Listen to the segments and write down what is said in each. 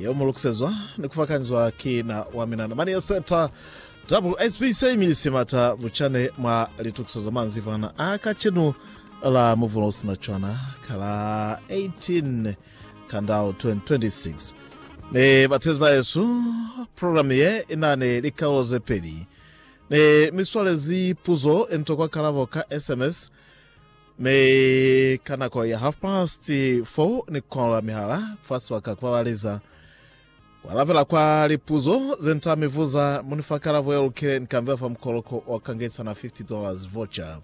Yeo mu lukisezwa ni ku fakanzwa ki na wa mina na mani ya seta. WSB se imilisi mata bucane mwa litukiso za manzivana a kacenu la Muvula u Sina Cwana ka la 18 Kandao 2026. Ne batezi bahesu, programe ye i na ni likaulo ze peli. Ne mi swalezi puzo ye ni tokwa kalabo ka SMS Mi ka nako ya half past four ni kukola mihala kufasi wa ka kubabaleza kualabela kwa lipuzo ze nita mi vuza muni fa kalabo ye lukile ni kambela fa mukoloko wa kangesa na $50 voucher.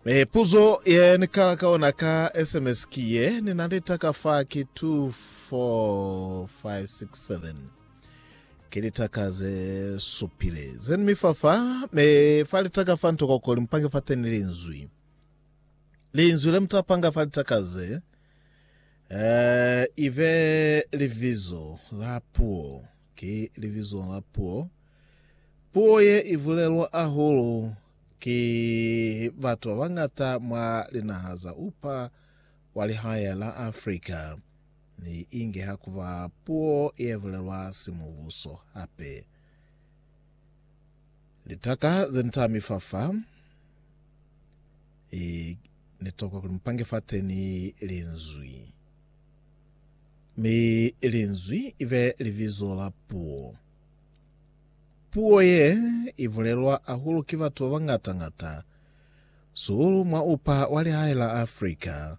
Mi puzo ye ni kala ka ona ka SMS ki ye, Ni na ni taka fa ki 24567. Ki litaka ze supile zeni mi fa fa, me fa litaka fa nto kokoli mupange fa teni linzwi. Linzwi le muta panga fa litaka ze, eh, ibe livizo la puo. Ki livizo la puo. Puo ye ibulelwa ahulu ki batu ba bangata mwa linaha za upa wa lihae la Afrika. Ni inge ha ku ba puo ye bulelwa simubuso hape. Litaka ze ni tami fa fa, e, ni tokwa kuli mu pange fateni Linzwi. Mi Linzwi i be libizo la puo. Puo ye i bulelwa ahulu ki batu ba bangata-ngata, sihulu mwa upa wa lihae la Afrika,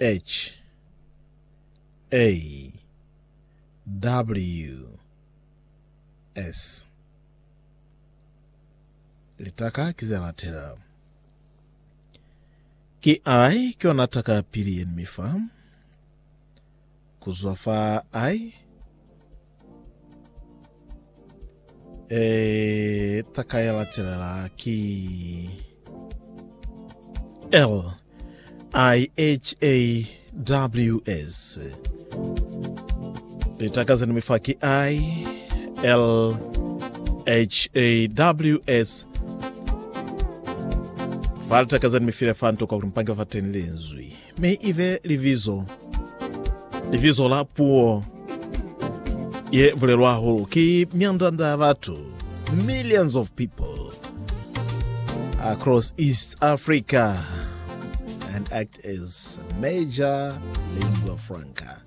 H A W S Litaka ki ze latela. Ki I ki yona taka ya pili ye ni mi fa. Ku zwa fa I. E, taka ya latelela ki L I H A W S. Litaka zeni mi fa ki I L H A W S. Fa litaka zeni mi file fa nto kwa kuli mupange fa teni linzwi. Mi i be libizo, libizo la puo ye bulelwa hahulu ki myanda-nda ya batu, millions of people across East Africa and act as major lingua franca.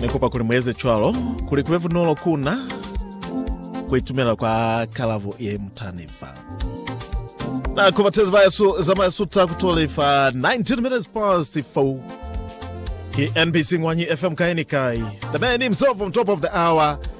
Ni kupa kuli mu eze cwalo kuli kube bunolo ku na ku itumela kwa kalabo ye mu tani fa. Na ku batezi ba yesu za ma yesu ta ku tole fa 19 minutes past 4. Ki NBC Ngwanyi FM kai ni kai. The man himself on top of the hour.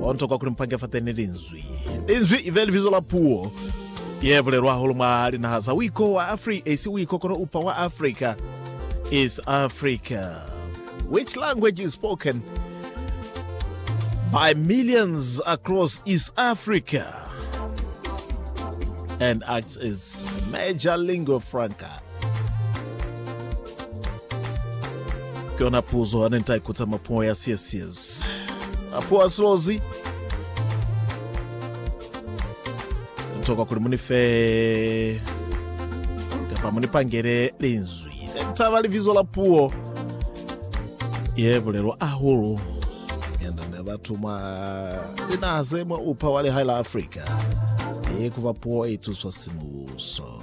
Ho ntokwa kuli mupange fateni linzwi. Linzwi ibe libizo la puo ye bulelwa hahulu mwa linaha za uiko wa Afrika, isi uiko kono upa wa Afrika, East Africa. Which language is spoken by millions across East Africa and acts as major lingua franca? Ki yona puzo hane ni ta ikutsa mwa puo ya Siesies. A puo ya silozi. Ni tokwa kuli mu ni fe kapa mu ni pangele linzwi. Ne ni taba libizo la puo ye bulelwa ahulu yanda ne batu mwa linaha ze mwa upa wa lihae la Afrika. Ye kuba puo e ituswa simuso.